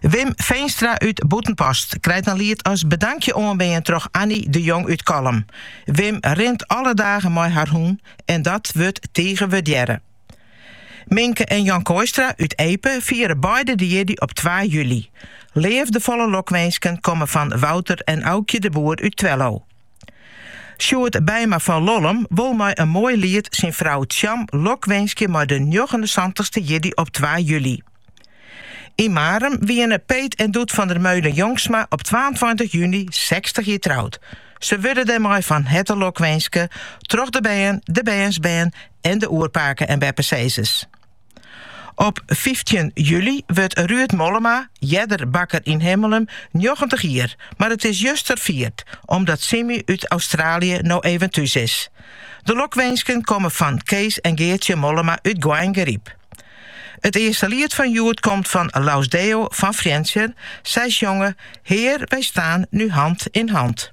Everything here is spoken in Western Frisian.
Wim Veenstra út Bûtenpost krijt in liet as bedankje oanbean troch Annie de Jong út Kollum. Wim rint alle dagen mei har hûn en dat wurdt tige wurdearre. Minke en Jan Kooistra út Epe fiere beide de jierdei op twa july. Leafdefolle lokwinsken komme fan Wouter en Aukje de Boer út Twello. Sjoerd Beima fan Lollum wol mei in moai liet syn frou Tsjam lokwinskje mei de njoggenensantichste jierdei op twa july. Yn Marum wiene Peet en Doet van der Meulen Jongsma op twaentweintich juny sechstich jier troud. Se wurde dêrmei fan herte lokwinske troch de bern, de bernsbern en de oerpake en beppesizzers. Op fyftjin july wurdt Ruud Mollema, earder bakker yn Himmelum, njoggentich jier, mar it is juster fierd omdat Simmy út Austraalje no even thús is. De lokwinsken komme fan Kees en Geartsje Mollema út Goaingeryp. It earste liet fan hjoed komt fan Laus Deo fan Frjentsjer, sy sjonge Hear, wy staan nu hand in hand.